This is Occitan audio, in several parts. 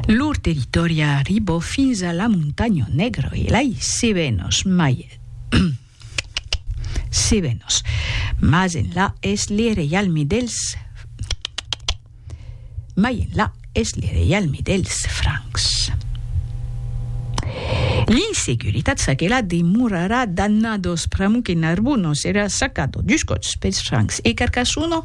Lor territòri arribò fins a la Montanha Negra e lai Cebenos mai Cebenos mas enlà es le reialme dels mai enlà es le reialme dels Francs. L'insecuritat saquela demorarà dannados pramo que Narbonne serà sacado dus còps pels Francs e Carcassona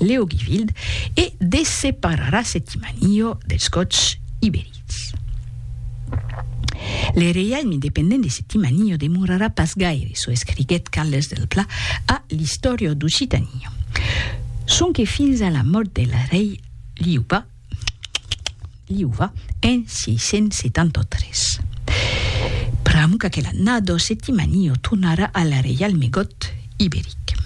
Leogivild e de separar a Septimaniò dels Gòts iberics. Le reialme independent de Septimaniò demorarà pas gaire, çò escriguèt Carles del Pla a l'Istòria d'Occitània, sonque fins a la mòrt del rei Liuba, Liuva en 673. Pr'amor qu'aquela nado Septimanio tornara al reialme got iberic.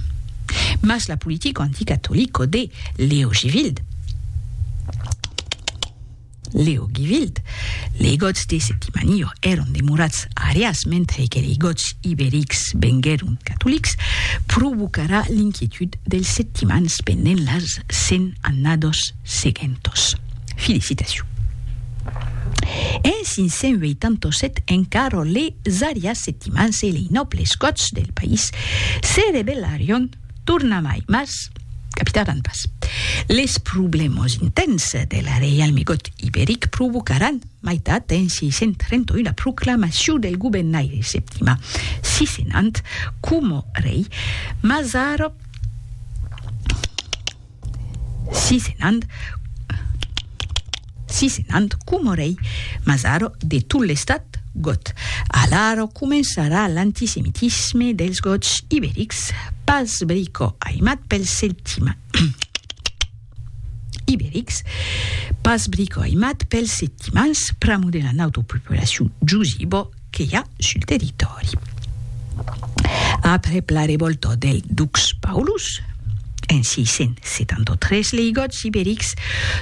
Mas la politico anticatolico de Leogivild, Leogivild, lei gots de Septimanio èron demorats arias mentre que lei gots iberics venguèron catolics, provocarà l'inquietud dels septimans pendent las cent annados Seguentos. Felicitacion. En 587 en Caro les arias settimans e lei nòbles gòts del país se rebellarion tornamai mas capitaran pas. Les problèmas intens del reialme gòt iberic provocaran mai tard en 631 la proclamacion del gobennaire septima sisenant coma rei Mazaro. Si senant, si senant coma rei, mas ara de tot l'estat got. Alara començarà l'antisemitisme dels gots iberics, pas brico aimat pels septima, iberics, pas brico aimat pels septimans, pramo de la nautopopulacion jusibo, que i a sul territòri. Après la revòlta del dux Paulus, en 673 lei Gòts iberics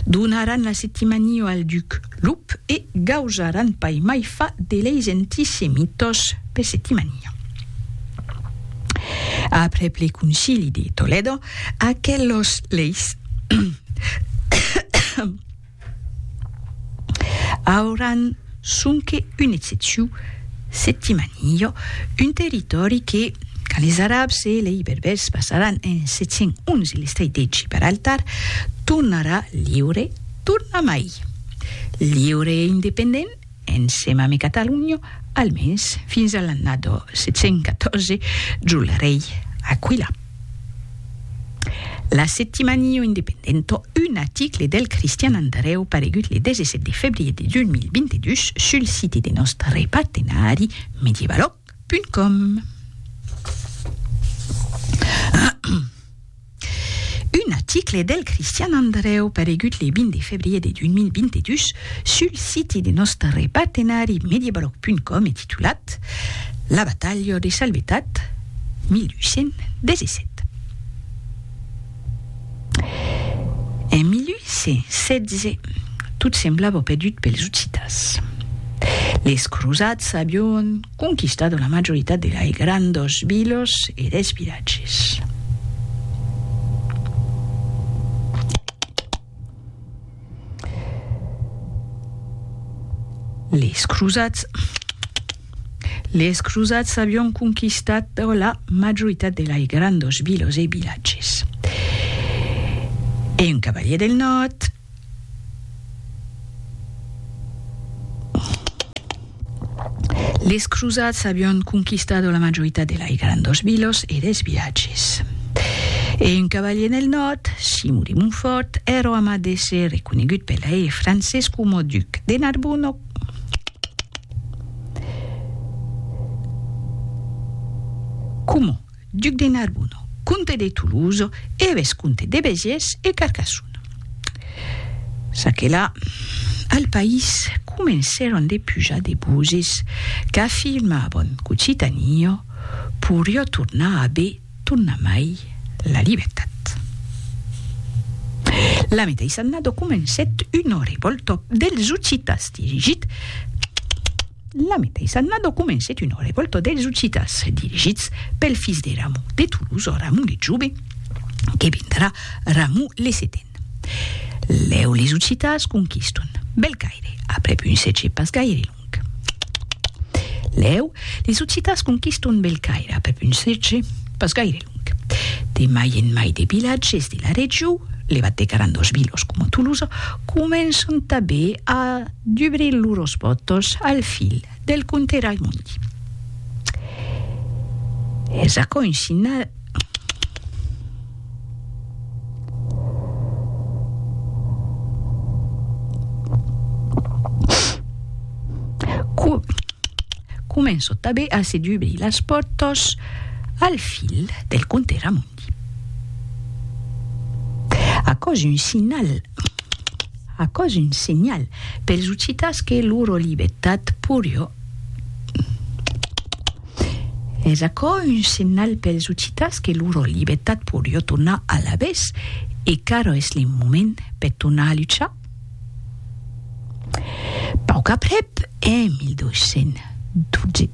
donaràn la Septimania al duc Lup e gausaràn pas mai fa de leis antisemítós per Septimania. Après le Concili de Toledo, aquelos leis Auran sonque un excepciu septimanillo, un territòri que, quand les Arabs e lei Berbèrs passaràn en 711 l'estret de Gibraltar, tornarà liure tornamai. Liure e independent, Ensema me Catalunho, almens fins a l'annada 714 jo le rei Aquila. La Settimanio Independento, un aticle del Cristian Andreu paregut le 17 de febrier de 2022 sul site de nòstre partenari Medievalo, Com. Un article del Cristian Andreu paregut le 20 de febrier de 2022 sul siti de nòstre partenari Mediablog.com e titulat La batalha de Salvetat, 1817. En 1816, tot semblava perdut pels occitans. Les crosats avion conquistat la majoritat de lei grandas vilas e dels vilatges. Les crosats Les crosats avion conquistat per la majoritat de lai grandos vilos e vilatges. E un cavalier del nòrd Les crusats avián conquistado la majoritat de lai grandos vilos e des vilatges. E un cavalier nel nòrd, Simon de Montfort, èro amat d'èsser reconegut pel lai e francés coma duc de Narbona o coma Duc de Narbonne, comte de Toulouse e vescomte de Béziers e Carcassonne. Ça que là, al país comencèron de pujar de buzis qu'afirmavan qu'Occitània poiriá tornar a be tornamai la libertat. La meteissa annada comencèt una revòlta dels occitans dirigit. La meteissa annada comencèt una revòlta dels occitans dirigits pel fils de Ramon de Tolosa, Ramon le Jove, que vendrà Ramon le Seten. Lèu les occitans conquiston Bèl Caire aprèp un sètge pas gaire long. Lèu les occitans conquiston Bèl Caire aprèp un sètge pas gaire long. De mai en mai de vilatges de la region, levat de grandos vilos coma Tolosa, començan tanben a dubrir lors pòrtas al fil del comte Raimondi. Es aquò un signal començan tanben a se dubrir las pòrtas Al fil del conte Ramondi. Aquò's un signal Aquò's un senhal pels occitans que loro libertat porió Es aquò un senhal pels occitans que loro libertat porió tornar alavetz e qu'arrò es le moment per tornar a luchar? Pauc aprèp, en 1212.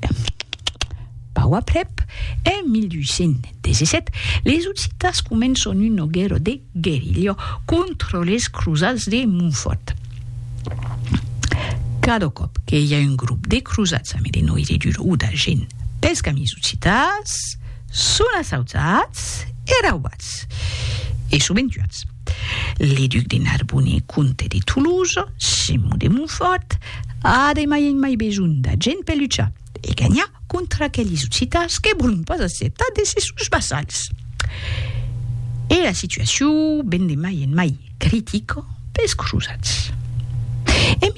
Pauc aprèp, en 1817, les Occitas començon una guèrra de guerilha contra les crosats de Montfòrt. Cada còp que i a un grop de crosats ame de noiridur o d'argent pels camins occitans, son assaujats e raubats, e sovent tuats. Le duc de Narbonne, comte de Toulouse, Simon de Montfòrt, a de mai en mai besonh d'argent per luchar. e ganhar contra aqueles occitans que vòlon pas acceptar de ser sos vassals. E la situacion ven de mai en mai critica pels crosats. En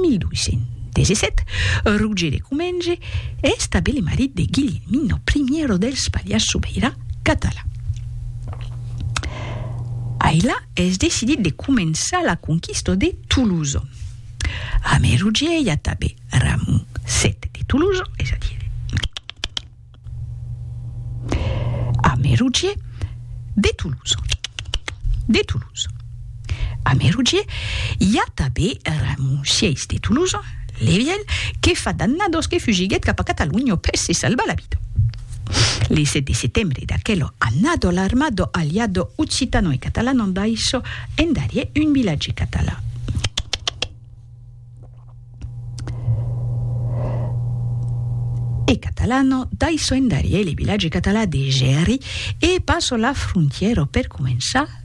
1217, Roger de Comenge estabelí marit de Guilhelmino I dels Pallars Sobirà catalan. Ailà es decidit de començar la conquista de Tolosa. A Merogie i a Tabé, Ramon sèt de Tolosa, es a dire, a Merogie de Tolosa, de Tolosa. A Merogie i a Tabé, Ramon sièis de Tolosa, Levièl, que fa d'annados que fugiguèt cap a Catalonha per se salvar la vida. Li 7 de setembre d'aquelo annado l'armado aliado occitano e catalano envaïsso en Darié un vilatge catalan. E catalano daisso en Darié le vilatge catalan de Gèri e passo la frontièra per començar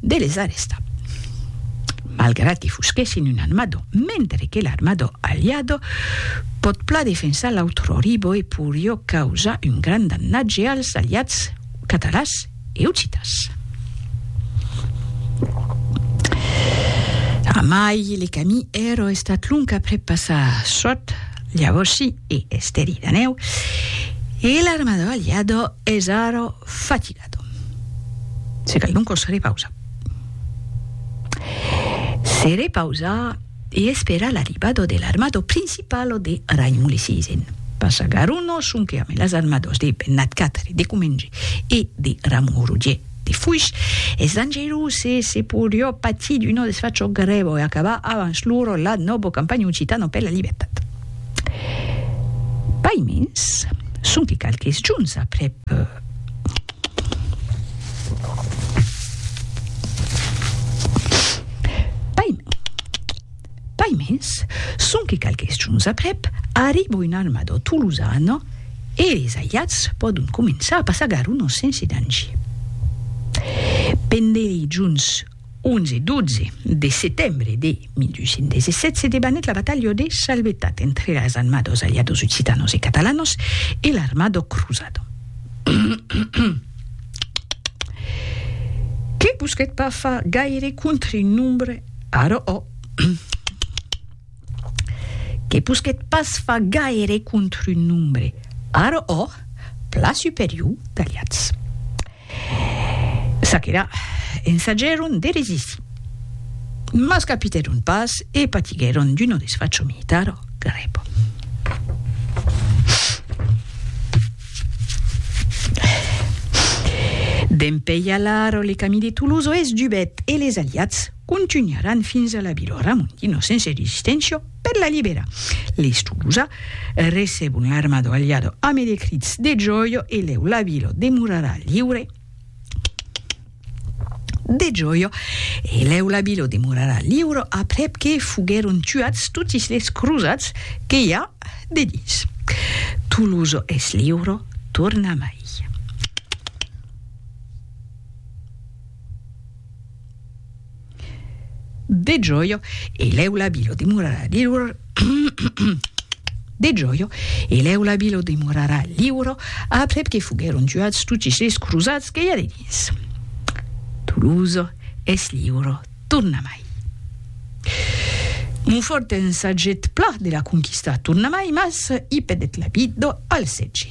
de les arrestar. Malgrat que fusquèssin un armado, mentre que l'armado aliado pòt plan defensar l'autroribo e porió causar un grand damnatge als aliats catalans e occitans. Amai le camí ero estat long aprèp passar sot Llavorsí e Esteri d'Anèu e l'armado aliado es ara fatigat. Se caidon cos repausa. Se repausa e espera l'arribado de l'armado principalo de Raimulesisen. Passa Garuno sonque ame las armados de Bennat Quatre de Comenge e de Ramon Roger de Foix. Es dangerus e se porió patir d'uno desfacho grèvo e acabar avans loro la nòbo campanha occitano per la libertat. Paimens, sonque qualques jorns aprèp, Paimens, sonque qualques jorns aprèp, arriba un armador tolosan e es aiats pòdon començar a passagar un ostensi dangier. Pendent lei jorns 11 e 12 de setembre de 1817 se debanèt la batalha de Salvetat entre las anmados aliados occitanos e catalanos e l'armado cruzado que busquèt pas far gaire contre-nombre ara ò que busquèt pas far gaire contre-nombre ara ò pla superior d'aliats. Ça qu'èra, ensagèron de resistir, mas capitèron pas e patiguèron d'una desfacho militar grèva. Dempèi alara le camí de Toulouse o est dubèt e les aliats contunharàn fins a la vilòra mon 1916. Per la libera l'estusa, recebon l'armado aliado ame de crits de joio e lèu la vila demorarà liure de joio e lèu la vila demorarà liure aprèp que foguèron tuats totis les crosats que i a de dins. Tolosa es liure, torna mai. De gioio e leu la bilo dimorarà liuro De gioio e leu la bilo dimorarà liuro aprèp que foguèron tuats totis es crosats que i a dedins. Tolosa es liuro tornamai. Monfòrt en sagèt pla de la conquistar tornamai mas i pedèt la bido al setge.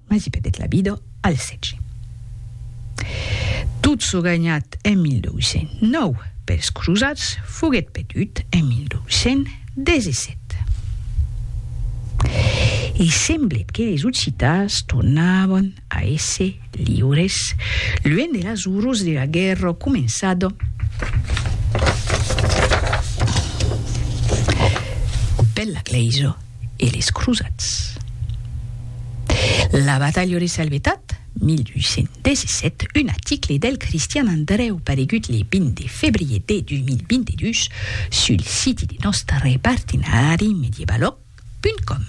Mas i perdèt la vida al sètge. Tot çò ganhat en 1209 pels crosats foguèt perdut en 1217. E semblèt que les Occitans tornavan a èsser liures luènh de las orrors de la guèrra començada per la Glèisa. e les crosats. La batalha de Salvetat, 1817, un aticle del Cristian Andrèu paregut le 20 de febrier de 2022 sul siti de nòstre partenari medievalog.com.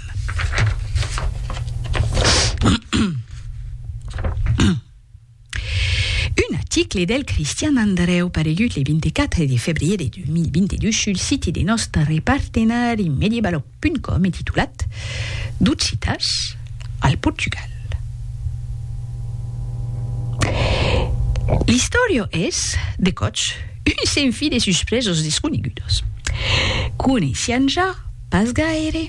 Un aticle del Cristian Andreu paregut le 24 de febrier de 2022 sul siti de nòstre partenari Mediebaloc.com e titulat D'occitas al Portugal. L'istòria es, de còps, un senfi de suspresas desconegudas. Coneissián ja pas gaire.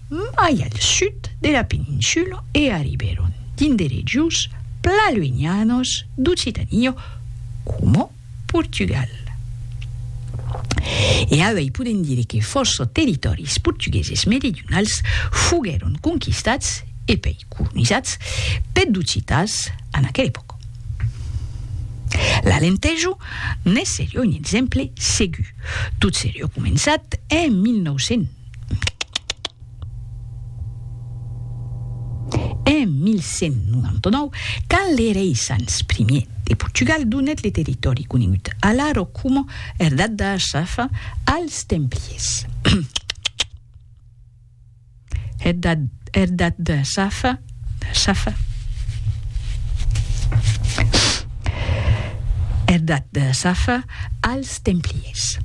mai al sud de la peninsula e arribèron dins de regions plan luenhanas d'Occitania coma Portugal. E avei podèm dire que fòrça territòris portugueses meridionals foguèron conquistats e pei colonizats peth d'occitans en aquela epòca. L'Alentejo ne serie un exemple segur, tot serie començat en 1900. En 1199, quand le rei Sanç I de Portugal donèt le territòri conegut alara coma Herdad da Asafa als templiers, Er dat de Safa, Safa. Er dat de Safa als Templiers.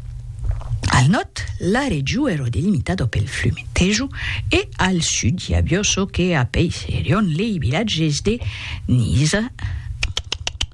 Al nòrd, la regiu ero delimitada pel flume Tejo e al sud i avió çò que apeisserion lei vilatges de Niza,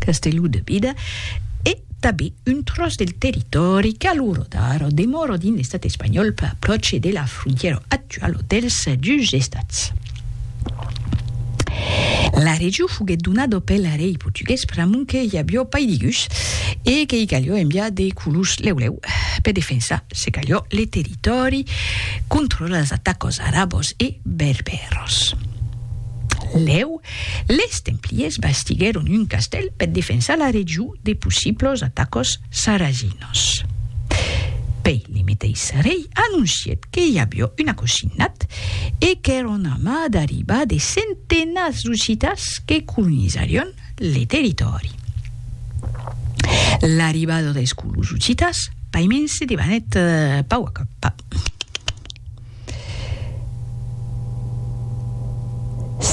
Castelhú de Bida e tabé un tròç del territòri qu'a lo rodar o demòro dins l'estat espanhòl per apròche de la frontièra actuala dels dus estats. La region foguèt donada pel rei portugués pr'amont que i avió pas de gus e que i calió enviar de colons lèu lèu per defensar, se calió, le territòri contra las atacas arabas e berbèras. Lèu, Les templiers bastiguèron un castèl per defensar la region de possiblos atacos sarazinos. Pei le meteis rei anoncièt que i avió un acosinat e qu'èra un ama d'arribar de centenats d'occitans que colonizarion le territòri. L'arribada dels colons occitans paimens se debanèt pauc a pauc.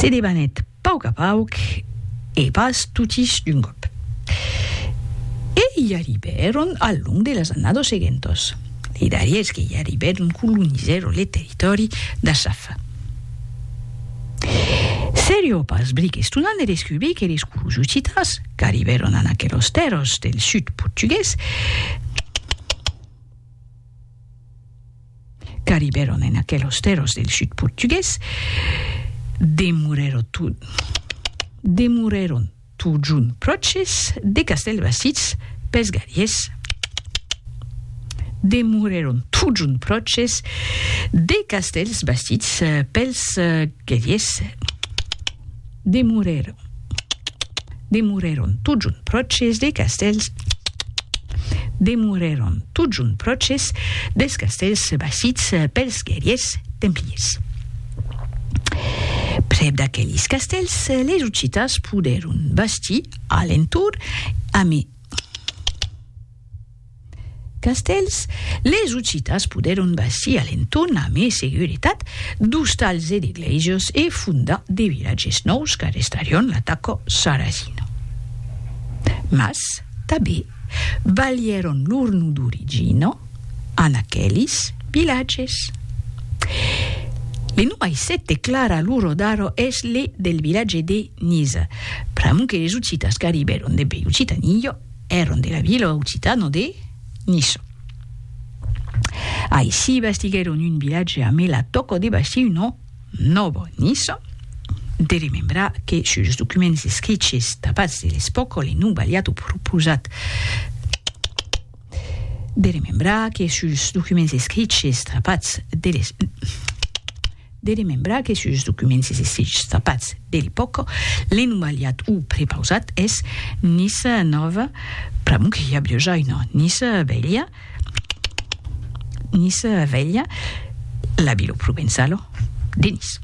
Se debanèt pauc a pauc e pas totis d'un còp. E i arribèron al long de las annados seguentos. Li darriers que i arribèron colonizèron le territòri d'Assaf. Serio pas bric estonant de descubrir que les colons occitans qu'arribèron en aquelos tèrros del sud portugués, Qu'arribèron en aquelos tèrros del sud portugués, demorèron to, demorèron totjorn pròches de Castèlbastits pes Gariés, demorèron totjorn pròches de Castèlsbastits pels Gariés. Demorèron, demorèron tot junt pròches de castèls, demorèron tot junt pròches dels castèls basits pels guerriers templiers. Prèp d'aquelis castèls, les Occitas podèron bastir a l'entorn, amé. Castèls, les Occitas podèron bastir a l'entorn a mai seguretat d'ostals e de glèises e fondar de vilatges nòus qu'arrestarion l'ataca sarrasina. Mas tanben balhèron lor nom d'origina en aquelis vilatges. Le nom aicète clar a l'ora d'ara es le del vilatge de Niza, pr'amor que les Occitas qu'arribèron dempuèi Occitania, Èran de la vila occitana de Niça. Aicí bastiguèron un vilatge amé la tòca de bastir una Nòva Niça. De remembrar que sus los documents escriches dabats de l'espòca le nom valiá tot pro posat de remembrar que sus los documents escriches dabats de l'espòca De remembrar que sus es documents e sitges trapats de l'epòca, l'enumaliat o prepausat es Niça Nòva, pr'amor que i a Biojaina, Niça Velha, Niça Velha, la vila provençala de Nice.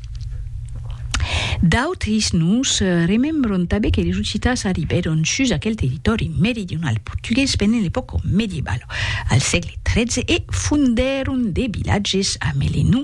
D'autres noms remembran tanben que les ocitans arribèron sus aquel territòri meridional portugués pendent l'epòca medievala, al sègle XIII, e fondèron de vilatges amé le nom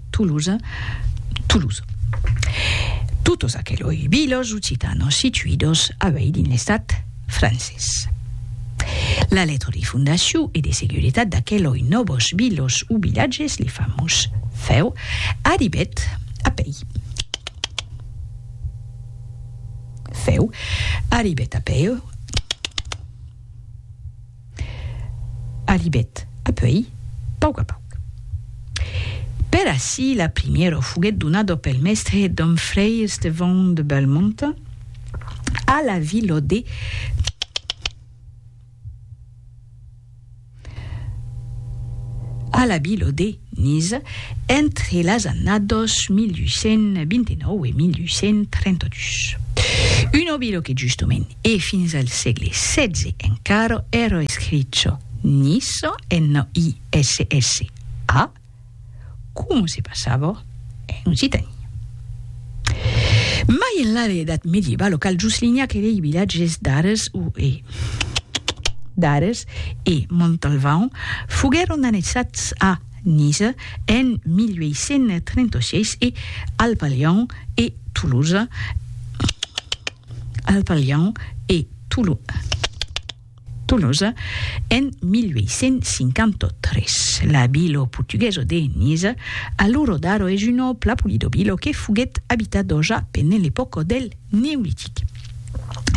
Toulouse, Toulouse. Totes aqueloi vilos occitanos situidos avei dins l'estat francés. La letra de fondacion e de seguretat d'aqueloi nòvos vilos o vilatges, li famós feu, arribèt a pei. Feu arribèt a peu. Arribèt apuèi pauc a pauc. Per ací la primièra foguèt donada pel mèstre Dom Frei Estevão de Belmont a la vila de a la vila de Nice, entre las annados 1829 e 1832. Un obilo que justement e fins al sègle setze encara èra escricho Nisso, N-I-S-S-A, coma se passava en occitani. Mai enlà de l'edat medieva, lo cal Juslinhac e lei vilatges d'Ares o e d'Ares e Montalvan foguèron annexats a Niza en 1836 e al Palhan e Tolosa al Palhan e Tolosa. Tolosa en 1853. La vila portuguesa de Niza, aluro d'Aro es una òpla polidovila que foguèt abitada òja pendent l'epòca del Neolitic.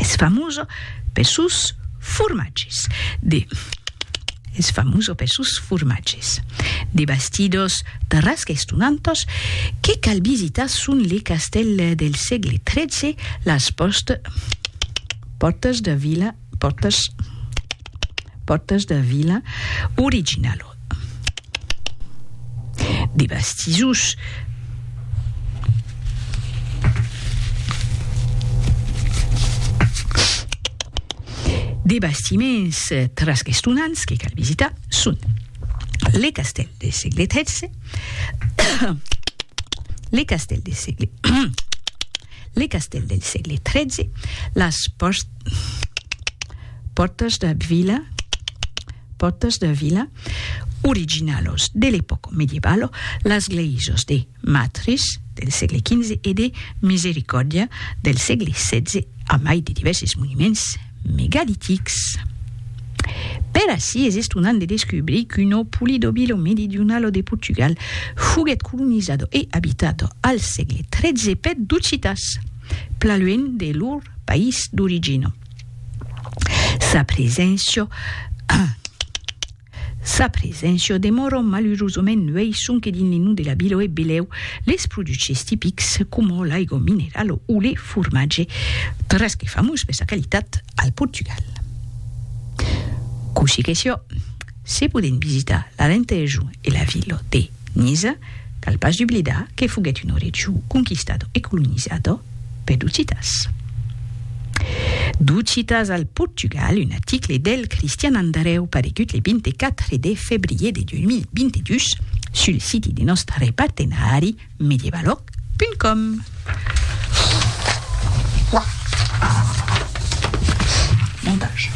Es famosa pes sòus formatges de es famosa pes sòus formatges. De bastidors tarrasca estonantas que cal visitar son le castèl del sègle 13, las pòstes pòrtas de vila Portas Portas da Vila original de Bastizús. De bastiments trasquestonants que cal visitar son le castèl de segle XIII, le castèl de segle le castèl del segle XIII, las pòrtas Pòrtas de vila Pòrtas de vila originalos de l'epòca medievalo, las gleisas de Matris del sègle XV e de Misericòrdia del sègle XVI a mai de divèrses monuments megalitics. Per ací es estonant de descubrir que lo poli do Vilo Meridionalo de Portugal foguèt colonizado e abitado al sègle XIII per d'occitans. plan luènh de lor país d'origina. Sa preséncia Sa preséncia demòra malurosament nuèi sonque dins li num de la vila e belèu les produches tipics coma l'aiga minerala o le formatge, tres qu'es famós per sa qualitat al Portugal. Cossí que siá, se podèn visitar l'Alentejo e la vila de. Nis cal pas dublidar que foguèt un orejou conquistado e colonizado per d'Occitans. D'Occitans al Portugal, un article del Cristian Andareu paregut le 24 de febrier de 2022 sul siti de nòstre partenari medievaloc.com. Montage.